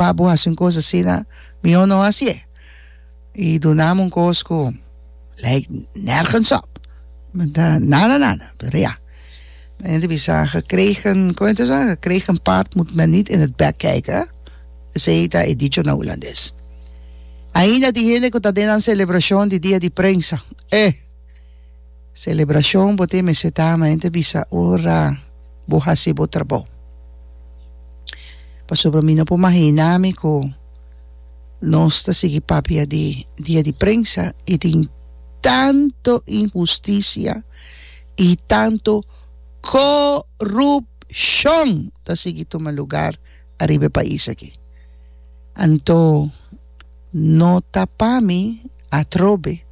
pa bo hasi un kos asina mihó no hasié i dunami un kos ku lèk nergens op ta nada nada pero ya men hende bisa gekregen komo ta sa gekregen paard moet men niet in het bek kijken esei ta e dicho na hulandes ainda di hende ku ta den nan selebrashon di dia di prensa eh. Selebrashon bo tin mester ta ama hende bisa ora bo hasi bo trabou. Pasobra mi no por mahina mi ku nos ta sigui papia di dia di prensa i tin tantu inhustisia i tantu korupshon ta sigui tuma lugar ariba e pais aki. Anto. No ta pa mi atrobe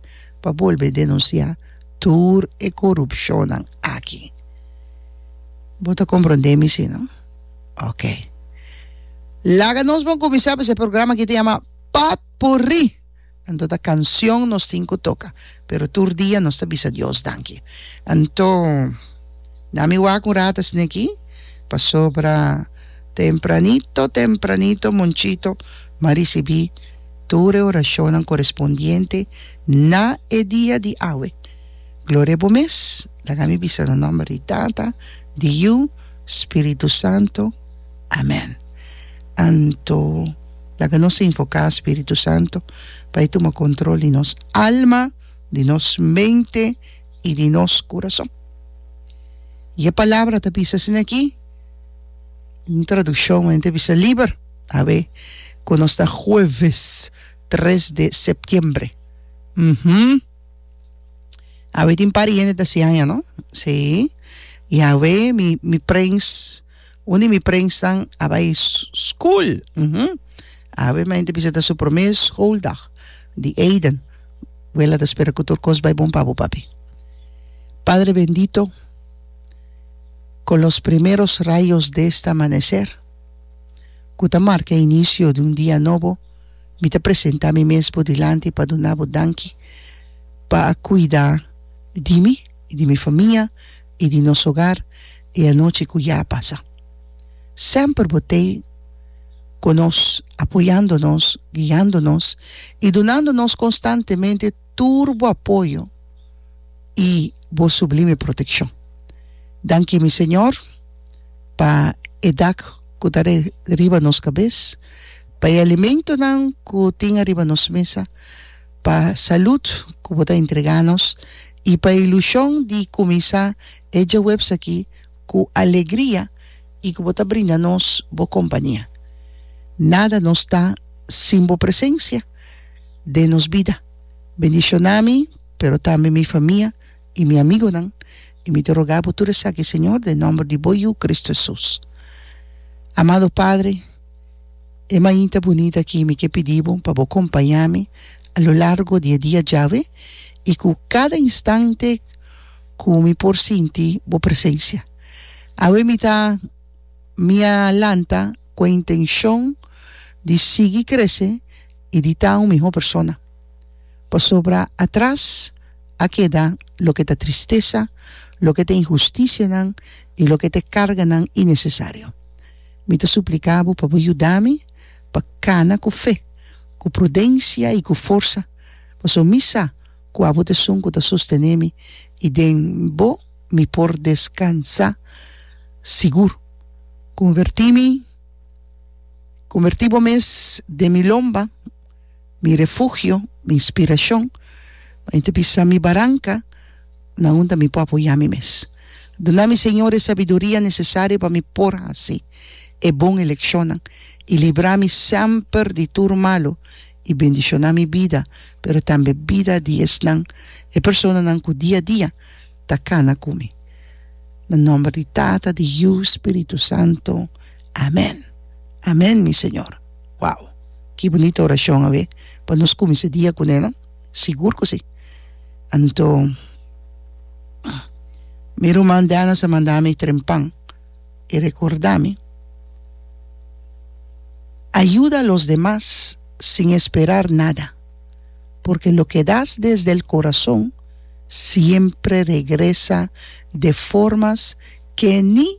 pa bolbe denunciá tur e corupcionnan aki. Bo ta comprendé mi si no? Ok. Laga nos bon cuminsá pa se programa aki ta yama Potpourri. Anto ta cancion nos tin cu toca. pero tur dia nos ta bisa Dios danki. Anto, na mi wak un rat esne aki, pasobra tempranito tempranito Monchito m'a risibí tur e orashonnan korespondiente na e dia di awe. Gloria Bo mes, laga mi bisa na nòmber di Tata, di Yu, Spiritu Santo. Amen. Anto, laga nos invoká Spiritu Santo pa e tuma control di nos alma, di nos mente i di nos curason. I e palabra ta bisa asina aki, un traduccion men ta bisa liber. Awe cu nos ta hueves tres de septiembre. Uhum. Awe tin par di hende ta hasi aña, no? Sí. I awe mi mi prins. Un di mi prensnan a bai school. Awe mañana ta bisa ta su prome schooldag di Aiden. Wela ta spera cu tur cos bai bon pa bo, papi. Padre bendito, con los primeros rayos de este amanecer cu ta marca inicio di un dia nobo, mi ta presenta mi mes bo dilanti pa duna bo danki pa a cuida di mi y di mi famia, i di nos hogar e anochi cu ya a pasa. Semper bo t'ei cu nos, apoyando nos, guiando nos i dunando nos constantemente tur bo apoyo i bo sublime proteccion. Danki mi Señor pa e dak cu ta riba nos cabes, pa e alimentonan cu tin ariba nos mesa, pa salud cu bo ta entrega nos y pa e ilusion di cuminsa e djahuebs aki cu alegria y cu bo ta brinda nos bo compania. Nada nos ta sin bo presencia den nos bida. Bendiciona mi pero tambe mi famia y mi amigonan y mi ta roga bo tur esaki Señor den nomber di bo Yu Cristo Jesus. Amado Padre. E mainta bunita aki mi ke pidi bo pa bo kompañá mi a lo largo di e dia djawe i ku kada instante ku mi por sinti bo presensia. Awe mi ta mi a lanta ku e intenshon di sigui krese i di ta un mihó persona, pasobra atras a keda loke ta tristesa, loke ta inhustisianan i loke ta e karganan inesesario. Mi ta supliká bo pa bo yuda mi pa kana ku fe, ku prudensia i ku forsa, pasobra mi sa ku abo ta esun ku ta sostené mi, i den bo mi por deskansá sigur. Konvertí mi, konvertí bo mes den mi lomba. mi refugio, mi inspiracion, mi ta bisa mi baranca, na hunta mi por apoya mi mes. Duna mi Señor e sabiduria necesario pa mi por haci e bon eleccionnan y libra mi semper di tur malo y bendiciona mi bida pero tambe bida di esnan, e personanan cu dia dia ta cana cu mi. Na nomber di Tata, di Yu, Spiritu Santo. Amen. Amen mi Señor. Wow! Ki bunita orashon awe pa nos kuminsá dia kuné no? Sigur ku si! Anto mi ruman Daniels a manda mi trempan i rekordá mi, Ayuda a los demas sin esperar nada, porque lo ke das desde el korason siempre regresa de formas ke ni